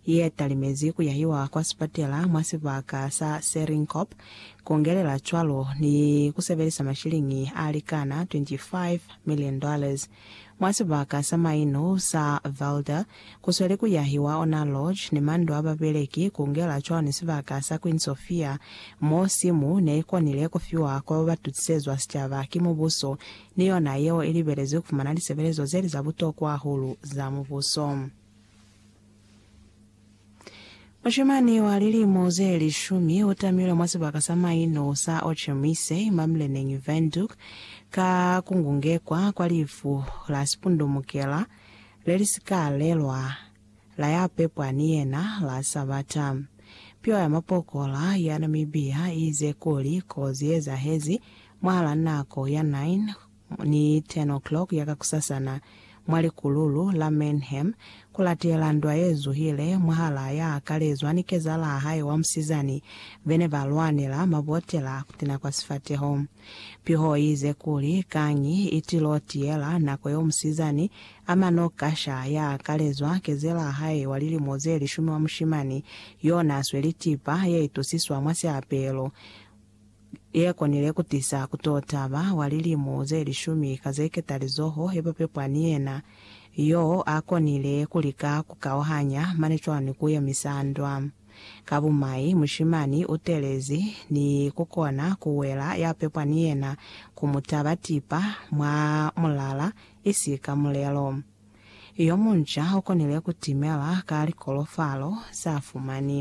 ye ya talimezi ku yahiwa kwa sipatela mwa sibaka sa Serinkop, kungelela cwalo ni ku sebelisa mashiliñi a likana 25 million dollars mwa sibaka sa maino sa Velda, ku sweli ku yahiwa ona lodge ni mandu a babeleki, kungela cwalo ni sibaka sa Queen Sofia mo simu ne i konile ku fiwa kwa ba ba tutisezwa sicaba ki mubuso ni yona yeo i libelezwi ku fumana lisebelezo ze li za butokwa hahulu za mubuso. Mushimani wa lilimo ze lishumi u tamilwe mwa sibaka sa maino sa Ochemise, Mamleneng, Windhoek, ka ku ngungekwa kwa lifu la sipundumukela le li si ka lelwa la ya pepwa ni yena la Sabata. Piwa ya mapokola ya Namibia i ize kuli kozi ye ezahezi mwahal'a nako ya 9 Ni 10 o'clock ya kakusasana, mwa likululu la Mannheim, kulatela ndwa yezuhile mwahalaa ya akalezwa ni kezalaa hae wa musizani, bene ba lwanela mabotela a kutina kwa sifateho. Piho iize kuli, Kañi itilo tiyela nako yo musizani ama no kasha ya akalezwa kezelaa hae wa lilimo ze lishumi wa mushimani yo na sweli tipa ye itusiswa mwa siapelo, Ye konile ku tisa ku to taba wa lilimu ze lishumi ka ze ketalizoho ye ba pepwa ni yena. Yo a konile ku lika ku kauhanya mane cwani ku yemisa ndwa. Ka bumai, mushimani u telezi ni ku kona ku wela ya pepwa ni yena ku mu taba tipa mwa mulala i si ka mulelo. Yo munca u konile ku timela ka likolofalo za fumani.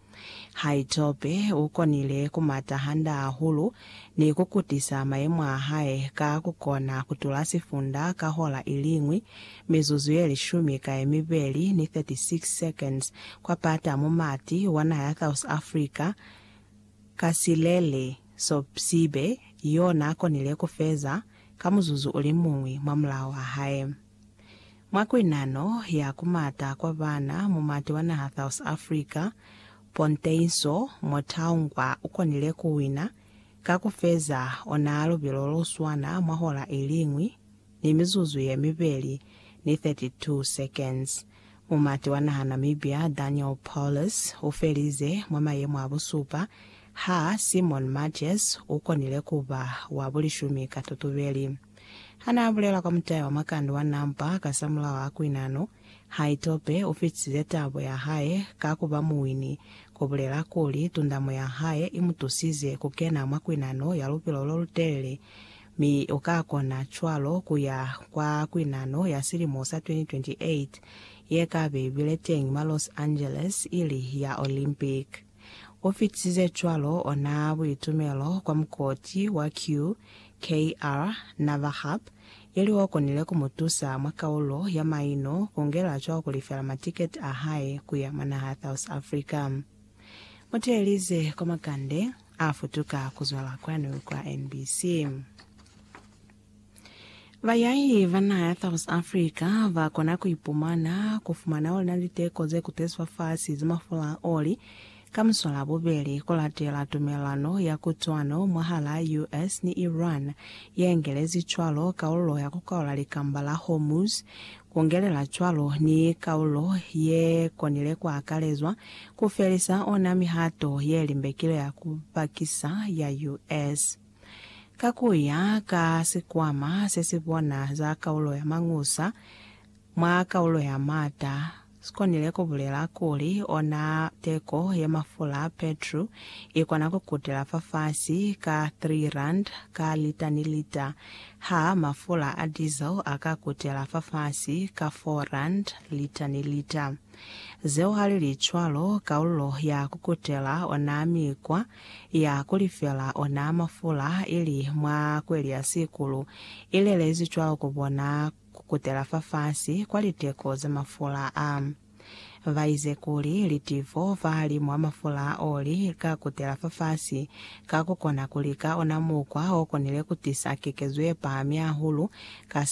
Haitope u konile ku mata hande hahulu ni ku kutisa mayemo a hae ka ku kona ku tula sifunda ka hora i li ñwi, mizuzu ye lishumi ka ye mibeli ni 36 seconds, kwa pata mo mati wa naha ya South Africa, Kasilele Sopsibe, yo n'a konile ku feza ka muzuzu u li muñwi mwa mulao wa hae. Mwa kuinano ya ku mata kwa bana mu mati wa naha South Africa, Ponteinswo Motaungwa ukonile ku wina ka ku feza ona lubilo lo swana mwa hola iliñwi ni mizuzu ye mibeli ni 32 seconds. Mu mati wa naha Namibia Daniel Paulus u felize mwa mayemo a busupa, ha Simon Matjes ukonile kuba wa bulishumi ka tutubeli. Hanaabulela kwa mutai wa makande wa Nampa kasamulaho a kuinano, Haitope ufitisize tabo yahae ka kuba muwini, kubulela kuli tundamo yahae imutusize kukena mwa kuinano ya lupilo lolutelele, mi ukakona cwalo kuya kwa kuinano ya silimo sa 2028 yekabe ibile teñi mwa Los Angeles ili ya Olympic. U fitisize cwalo ona buitumelo kwa mukoti wa QKR Navahap, ili o konile ku mu tusa mwa kaulo ya maino ku ngela cwa ku lifela matiketi a hae ku ya mwa naha ya South Africa. Mu teelize kwa makande a futuka ku zwala kwanu kwa NBC. Bayahi ba naha ya South Africa ba kona ku ipumana ku fumana oli na liteko ze kutezwa fasi ze mafula a oli ka muswala bubeli ku latela tumelano ya kutwano mwahal'a US ni Iran ye engelezi cwalo kalulo ya ku kaula likamba la Hormuz, ku ngelela cwalo ni kalulo ye konile ku akalezwa ku felisa ona mihato ye limbekile ya ku pakisa ya US. Ka ku ya ka sikwama se si bona za kaulo ya mañusa mwa kaulo ya m'ata, si konile ku bulela kuli ona teko ye mafula a petru i kona ku kutela fafasi ka R3 ka lita ni lita, ha mafula a diesel a ka kutela fafasi ka R4 lita ni lita. Zeo ha li li cwalo, kaulo ya ku kutela ona mikwa ya kulifela ona mafula ili mwa kweli ya sikulu, ilelezi cwalo ku bona kukutela fafasi kwa liteko za mafula a. Baize kuli litivo fahalimu ha mafula a oli lika kutela fafasi, ka kukona kuli ka ona mukwa okonile kutisa kekezo yepahami hahulu ka sa